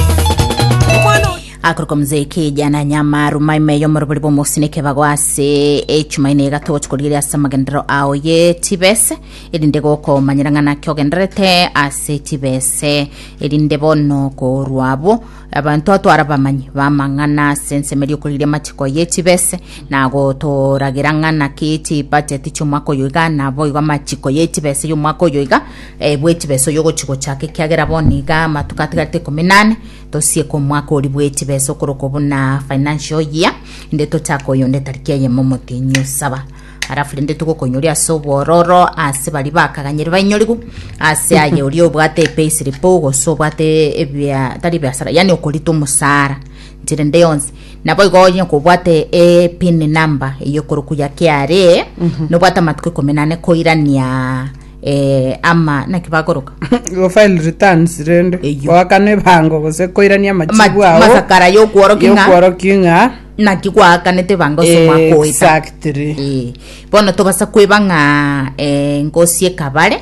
Omwana oyo. akorokwa mzee kijana nyamaru maime yomorobori bomosineke bago ase echumaine egato gochia korigeria ase amagenderero ao ye tibese erinde gokomanyera ng'a naki ogendererete ase tibese erinde bono korwa abwo abanto atwara bamanyi bamang'ana ase ensemo eria okorigeria amachiko ye tibese na gotoragera ng'a naki chibacheti chiomwaka oyo iga naboigo amachiko ye tibese yomwaka oyo iga bw'Echibeso y'Ogochi-gochaka, ekiagera bono nigo amatuko atigarete ikomi na ane tosieke omwaka oria bw'Echibeso okorokwa buna financial year, inde tochake oyonde etariki eyemo omotienyi o saba. Alafu rende togokonyori ase obwororo ase baria bakaganyeri bainyorigu ase aye oria obwate epayslip gose obwate ebia tari ebiasara yani okorita omosara chiri nde yonsi nabo igo onye kobwate epin number eye ekorokwa ya KRA nobwate amatuko ikomi na ane koirania eh, ama naki bakoroka Go file returns rende Eyio. goakana ebango gose koirania amachibu Ma- ao masakara yokworokia ng'a yokworokia ng'a naki gwakanete bango Eh, somakoeta exactly Eh, bono tobasa kweba ng'a eh, ngosi ekabare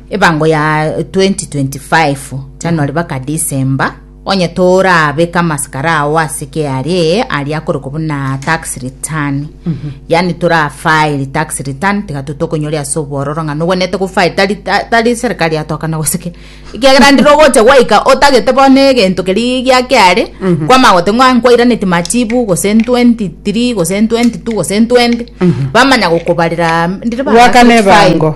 ebango ya 2025 january baka december Onye toraabe k'amasikara ao ase KRA aria akorokwa buna tax return yaani torafile tax return tiga totokonyoria ase obwororo ng'a nogwenerete gofile tari ta- tari serikali yatokana gose ki ekiagera ndire ogocha gwaika otagete bono egento keria gia KRA kwama gote ng'a nkwairaneti machibu gose 23 gose 22 gose 20 bamanya gokobarera ndire Gwakana ebango.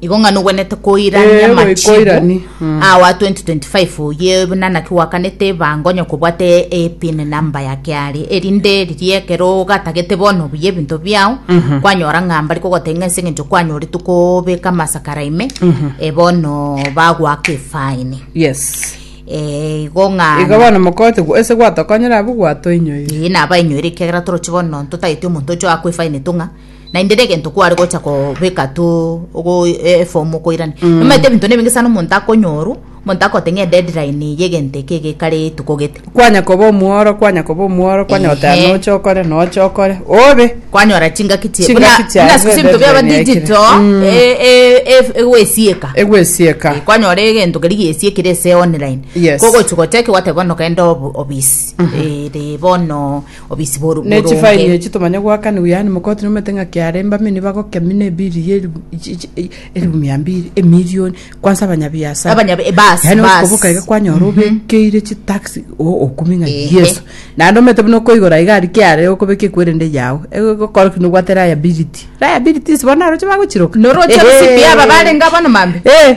igo ng'a nogwenete koirania Eh, machibu goikoirani, mm. awa 2025 oye buna naki gwakanete bango onye kobwate epin namba ya kiari erinde riria ekero ogatagete bono buya ebinto biao kwanyora ng'a mbari kogotebia ng'a ase eng'encho kwanyoretwe kobeka amasakara ime eh, bono bagwaka efaini yes Eh, igo ng'a iga bono mokote gwa- ase gwatokonyera abwo gwatoinyoire Ee, naba inyoire ekiagera toroche bono totagete omonto ocho akwa efaini tong'a Naende regento kware gocha kobeka tu ogo e- eform okoirani Mm. omanyete ebinto na ebinge sana omonto akonyorwa omonto agote ng'a edeadline yegento eke egekare etuko gete kwanya koba omworo kwanya koba omworo kwanya goteba Ehe. noche okore noche okore obe kwanyora chingaki chie Chingaki buna- chiaye, buna siku ase ebinto biaba deadline yaikire. digital Mm. e- e- e- egwesieka egwesieka Eh, kwanyora egento keri giesiekire ase online Yes. kogochi gochaki gwateba bono genda obo- obisi Eh, ri bono obisi bw'oru- Ne bw'oronge. chifaini echi tomanye goakanigwa yaani mokoti nomete ng'a kiare mbamia nibagokemi ne ebiri ye elifu chi- chi- e- elifu mia mbiri emilioni kwansa abanyabiasara Abanya- eh, bas, yaani bas. okoboka iga kwanyora obekeire chitax o- okumi ng'a Ehe. yeso naende omanyete buna okoigora iga aria kiare okobeka equerende yago egokora ki nobwate liability liabilities bono naroche bagochiroka Noroche Ehe. CPA aba barenge bono mambia. Eh.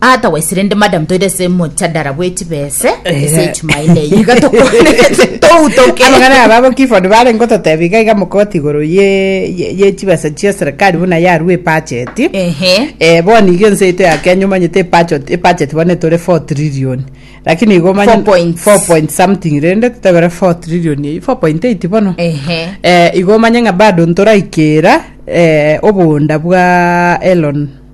otherwise rende madam toire ase mochadara bw'echibese ase echumaine eye iga tokonerete toutoke abang'ana aba abo kiford bare ngototebi iga iga mokoti igoro ye ye- ye chibesa chia serikali buna yarue epacheti ehe Eh, boni iga ense yaito ya kenya omanyete epachot- epacheti bono etore 4 trillion lakini igo omanye- Four point. 4 point something rende totebere 4 trillion eyio 4.8 bono ehe eh, igo omanye ng'a bado ntoraikera eh, obonda bwa elon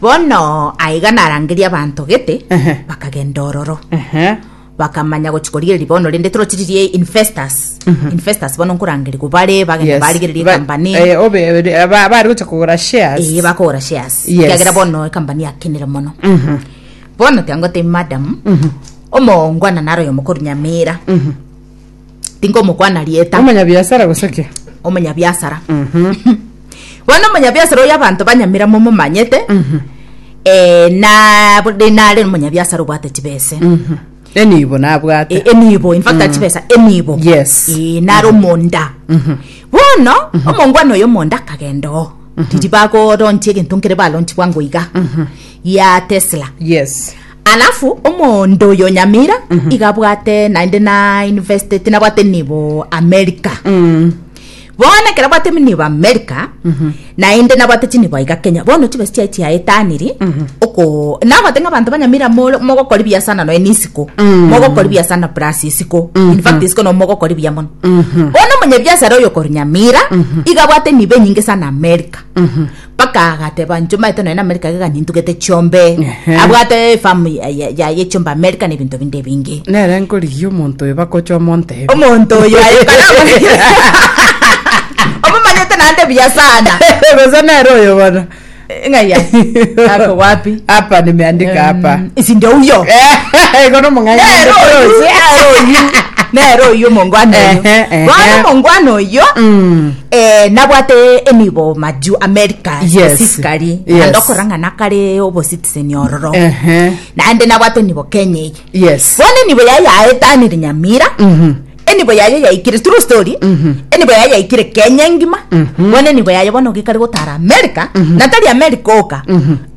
Bono aiga narangeria abanto gete, Ehe. bakagenda ororo. Ehe. bakamanya gochi korigereria bono rende torotiririe investors investors bono nkorangeria gobare bagenda Yes. barigereria Ba- company eh, obe- eh, ba- bari gocha kogora shares. eye bakogora shares Yes. kiagera bono ecompany yakenire mono Mhm. bono tiangote madam omoongwana naro oyo mokoro nyamira tingomokwana rieta Omonyabiasara gose ki? omonyabiasara bono omonyabiasara oyo abanto banyamira momomanyete eh, na bode nare omonyabiasara obwate chibese Enibo nabwate. E- enibo in fact achibesa enibo Yes. Eh, nare omonda bono omongwana oyo omonda akagenda oo riri bagoronchi egento nkere baronchigwa ngoiga ya tesla Yes. Alafu omonto oyo nyamira mm-hmm. igabwate naende na university tinabwate nibo america mm. bono ekero bwate nibo america mm-hmm. naende nabwate chinibo iga kenya bono chibesi chiaye chiaetaniri mm-hmm. oko nagote ng'a abanto banyamira mogokori biasana noe nisiko mm. mogokori biasana plus isiko in fact isiko no mogokori bia mono bono omonyebiasara oyo kori nyamira igabwate nibo enyinge sana america Mpaka agateba nchomba eto nonye na America iga gani ntugete chiombe Ehe. abwate efamu yaye chiomba America na ebinto binde ebinge Nere nkorigia omonto oyo bakocha omontebe. omonto oyo aye karamoregie omomanyete naende buya sana Gose nere oyo bono. ng'ai ase ako wapi Hapa nimeandika hapa. Mm, isi ndio huyo Igo nomong'aini nero oyo ndotoche. nero oyu nero oyu omongwana oyo Ehe, ehe. bono omongwana oyo Mm. Eh, nabwate enibo maju america Yes. specifically Yes. naende okorang'ana kare obositizeni ororo Ehe. naende nabwate enibo kenya eye Yes. bono enibo yaye yaetanire nyamira Mhm. enibo yaye yaikire true story enibo yaye yaikire kenya engima bono enibo yaye bono gikari gotara america natari america oka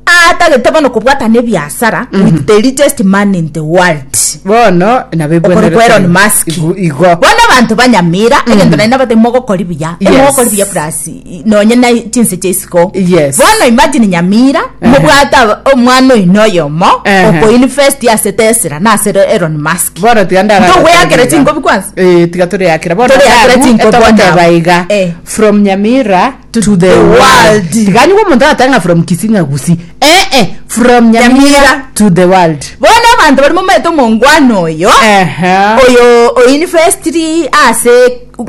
Atagete bono kobwatana ebiasara mm -hmm. with the richest man in the world bono nabekorokwa Elon Musk igo bono abantu banyamira mm -hmm. egento naina bate mogokori buya yes. mogokori buya plus nonye na chinse chesiko yes. bono imagine nyamira uh -huh. mobwata omwana oyino oyomo uh -huh. oko invest ase Tesla na ase Elon Musk bono tiga ndara to weyakira chingobi kwanza eh tiga tore yakira bono tore yakira chingobi bono baiga eh. from nyamira to, To the the world. world. Tiganyigwa omonto agateba ng'a from Kisii ng'a Gusii. Eh, eh, from Nyamira Nyamira. to the world. bono abanto bari momaete omongwana oyo Ehe. oyo oinvestiri ase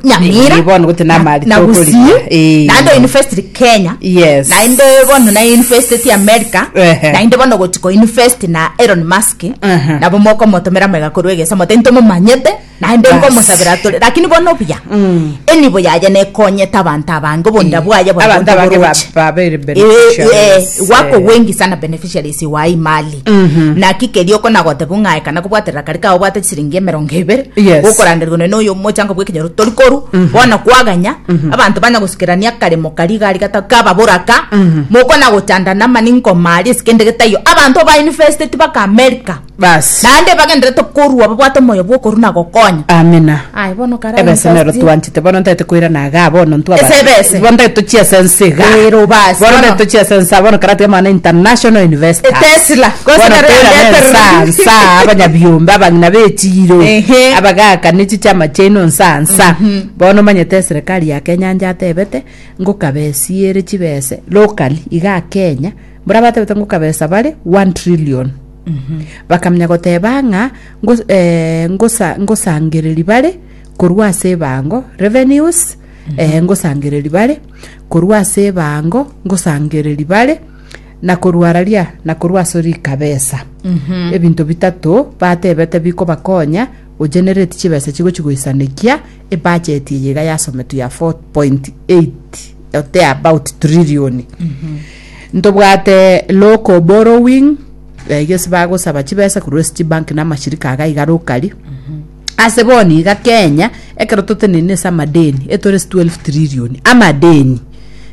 nyamira Eh, bono gote namari na tokorigia. gusii Eh. naende oinvestiri kenya Yes. naende bono nainvesteti america Ehe. naende bono goti koinvesti na elon musk Ehe. nabo mokomotomera mega korwa egesa mote ntomomanyete Naende Bas. nkomosabera atore, lakini bono buya Mm. enibo yaye nekonyete abanto abange obonda Eh, bwaye bono abanto abange ba- boroche. babere Eh, beneficiaries, eh, eh. gwakogwengi sana beneficiaries wa imali Mhm. naki keria okonagotebu ng'ae kana kobwaterera kari kao obwate chisiringi emerongo ebere Yes. gokoranderwa none oyo omochango bw'ekenyoro tori koru bono kwaganya abanto banya gosikerania akaremo kari gari gata kaba boraka mokona gochandana mani nkomari esike ndegete iyo abanto ba university baka america Basi. Naende bagenderete korua babwate omoyo bw'okorua na gokonya. Amina. Aye, bono kare Ebese nero amosasie. twanchete bono ntete koirana igaa bono ntwa Ese abana. ebese. Bono ntete tochia ase ense igaa. Ero basi, Bono bono. ntete tochia ase ense aa bono kare ateba mana international investors. Etesla. Gose Bono nero toirane yande ense aa, etereri. ense aa, abanyabiombe abang'ina b'echiro Ehe. abagakane chichama chiaino ense aa ense aa. Bono omanyete eserekari ya Kenya anja atebete ngokabesiere chibese locally igaa Kenya mbore abatebete ngokabesa bare one trillion. bakamenya goteba ng'a ngos- eh, ngosa- ngosangereri bare korwa ase ebango revenues eh, ngosangereri bare korwa ase ebango ngosangereri bare na korwa raria na korwa ase rikabesa ebinto bitato batebete bikobakonya ogenerate chibesa chigochi goisanekia ebacheti eye iga yasometwe ya 4.8 or thereabout trilioni Ntobwate local borrowing, eh, gese bagosaba chibesa korwa ase chibank na amashirika aga iga rokari. Ase bono iga Kenya, ekero totenenine ase amadeni, etore ase 12 trillion, amadeni.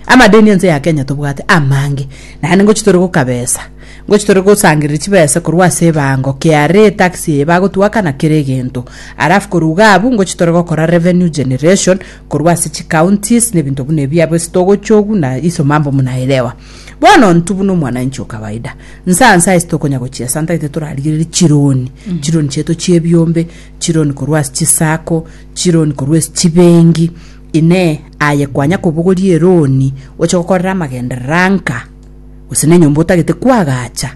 Amadeni ense ya Kenya tobwate amange, naende ngochi tore gokabesa, ngochi tore gosangereria chibesa korwa ase ebango, KRA etax eye bagotwaka na kera egento. Alafu koruga abwo, ngochi tore gokora revenue generation, korwa ase chicounties, nebinto buna ebi abo ase togochogu na iso mambo munaelewa. Bono ontu buna omwananchi okawaida, nsa nsa ase tokonya gochia santa gete torarigereri chironi, chironi chiaito chiebiombe, chironi korwa ase chisako, chironi korwa ase chibengi, inee aye kwanya kobogoria eroni oche gokorera amagenderera anka? Gose nenyomba otagete kwagacha?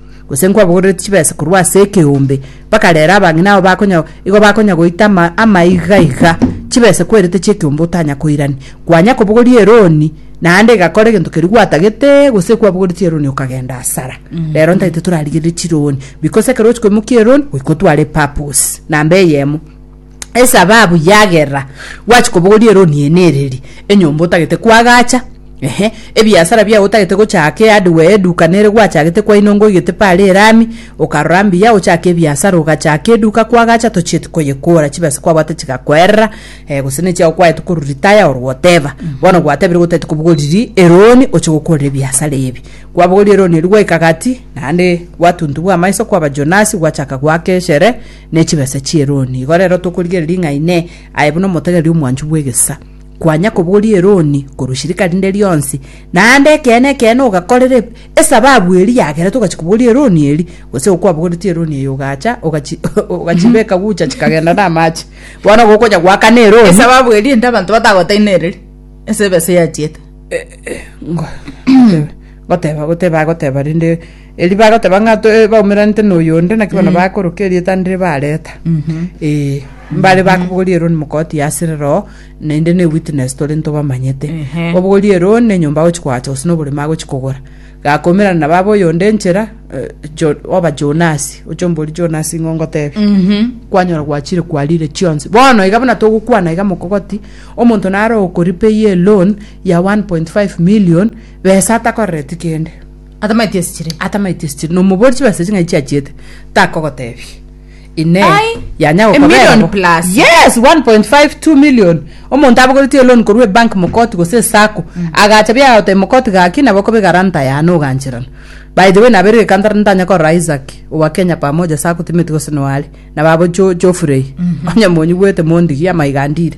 Gose nkwabogorereti chibesa korwa ase ekeombe, bakarera abang'ina abo bakonya igo bakonya goita ama amaiga iga, chibesa kwerete chi'ekeombe otanya koirani. Kwanya kobogoria eroni, naende egakora egento keria gwatagete, gose kwabogoreti eroni okagenda asara. Rero ntaito torarigererie chironi, bikosa ekero ochi koimokia eroni, goika otware epurpose, namba eyemo. esababu yagerera gwachi kobogoria eroni eye nereri, enyomba otagete koagacha, ehe, ebiasara biago otagete gochaka ehardware eduka nere gwachagete kwaino ngoigete pare erami, okarora mbuya ochake ebiasara ogachaka eduka kwagacha tochieti koyekora chibesa kwabwate chigakoerera eh, gose nechiago kwaete koru retire or whatever, bono gwatebirekwa otaete kobogoriri eroni oche gokorera ebiasara ebi. Kwabogoria eroni eria gwaika gati, naende gwatuntu bwa amaiso kwaba Jonasi gwachaka goaka eshere, ne chibesa chi'eroni. Igo rero tokorigereria ng'a Inee, aye buna omotegereria omwanchwa bw'egesa, kwanya koboria eroni korwa shirika rinde rionsi, naende ekeene ekeene ogakorera eb- esababu eria yagerete ogachia koboria eroni eria, gose igo kwabogoretie eroni eyo ogacha ogachi ogachibeka gucha chikagenda namache, bono igo okonya goakana eroni. Esababu eria inde abanto batagoteine ereri ase ebesa eyachiete. Ngo- goteba goteba agoteba rende. Erio bagoteba ng'a to- eh, baumeranete na oyonde, naki bono bakoroka erieta ndire bareta. Ee, mbare bakobogoria eroni mokoti yasire roo, naende ne witness tore ntobamanyete. Ehe. Obogoria eroni na enyomba agochi koacha gose na oborema agochi kogora. Gakoimerana na baba oyonde enchera, eh, Jo- oba Jonasi, oche ombori Jonasi ng'o ngotebi. Kwanyora gwachire kwarire chionsi. Bono iga buna togokwana iga mokogoti, omonto naro okorepay a loan ya 1.5 million, besa atakorereti kende. Atamaeti ase chire. atamaeti ase chire, na omoboori chibesa echi ng'ai chiachiete, takogotebia. Inee, Ai, yanya a million gokoberabo? plus. Yes, 1.5, 2 million. Omonto abogoretie eloni korwa ebank mokoti gose esacco, agacha biaga gotebia mokoti gaki nabo okobe guarantor yane ogancherana. By the way, nabeire gekantora ntanya korora Isaac owa Kenya Pamoja Sacco timeti gose noare, nabo abwo cho chofurei. Onye monyigwete mondigie amaiga ndire.